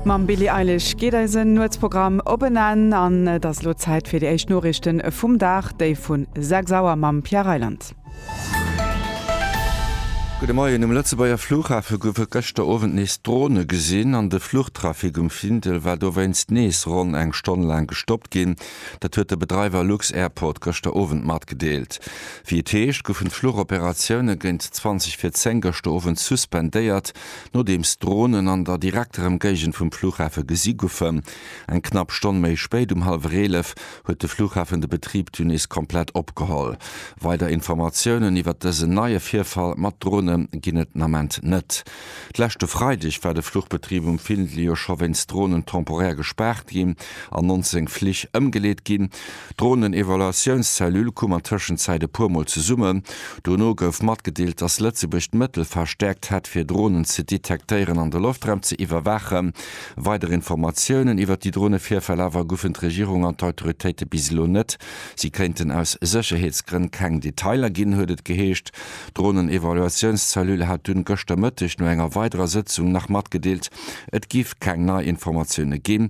Mam Billie Eilish geet eisen Nuetsprogramm op en Enn an et ass elo Zäit fir déi éischt Noriichte vum Dag, déi vu 6 Auer mam Pierre Reyland. Gudde Moien, Um Lëtzebuerger Flughafe goufe gëschter Owend nees Drone gesinn an de Fluchtrafic um Findel war dowéinst nees ronn eng Stonn laang gestoppt ginn. Dat huet de Bedreiwer lux-Airport gëschter Owend matgedeelt. Wéi et heescht, goufen d'Fluchoperatioune géint 20 vir 10 gëschter Owend suspendéiert. nodeems d'Dronen an der direkter Emgéigend vum Flughafe gesi goufen. Eng knapp Stonn méi spéit, um hallwer 11, huet de Flughafen de Betrib dunn nees komplett opgeholl. Weider Informatiounen iwwert dësen neie Virfall mat Drone ginn et den Ament net. De leschte Freideg war de Fluchbetrib um Findley jo scho wéinst Dronen temporär gespaart ginn an 19 Flich ëmgeleet ginn. D'Dronenevaluatiounszellule koum an Tëschenzäit e puer Mol zesummen. Dono gouf matgedeelt, dass Lëtzebuerg d'Mëttel verstäerkt hätt, fir Dronen ze detektéieren an de Loftraum ze iwwerwaachen. Weider Informatiounen iwwert déi Dronevirfäll awer gufen d'Regierung an d'Autoritéite bis elo net. Si kéinten aus Sécherheetsgrënn keng Detailer ginn, huet et geheescht. D'Dronenevaluatiounszellule hat dunn gëschter Mëtteg no enger weiderer Sëtzung nach matgedeelt, et giff keng nei Informatioune ginn.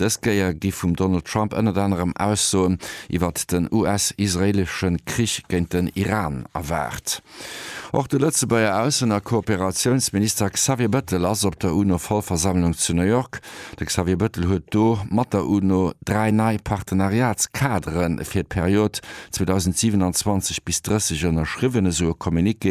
Dës Kéier gi vum Donald Trump ënnert anerem Aussoen iwwert den US-israeelesche Krich géint den Iran erwaart. Och de Lëtzebuerger Aussen a Kooperatiounsminister Xavier Bettel ass op der UNO-Vollversammlung zu New York. De Xavier Bettel huet do mat der UNO dräi nei Partenariatskadere fir d'Period 2027 bis 30 ënnerschriwwen, esou e Communiqué.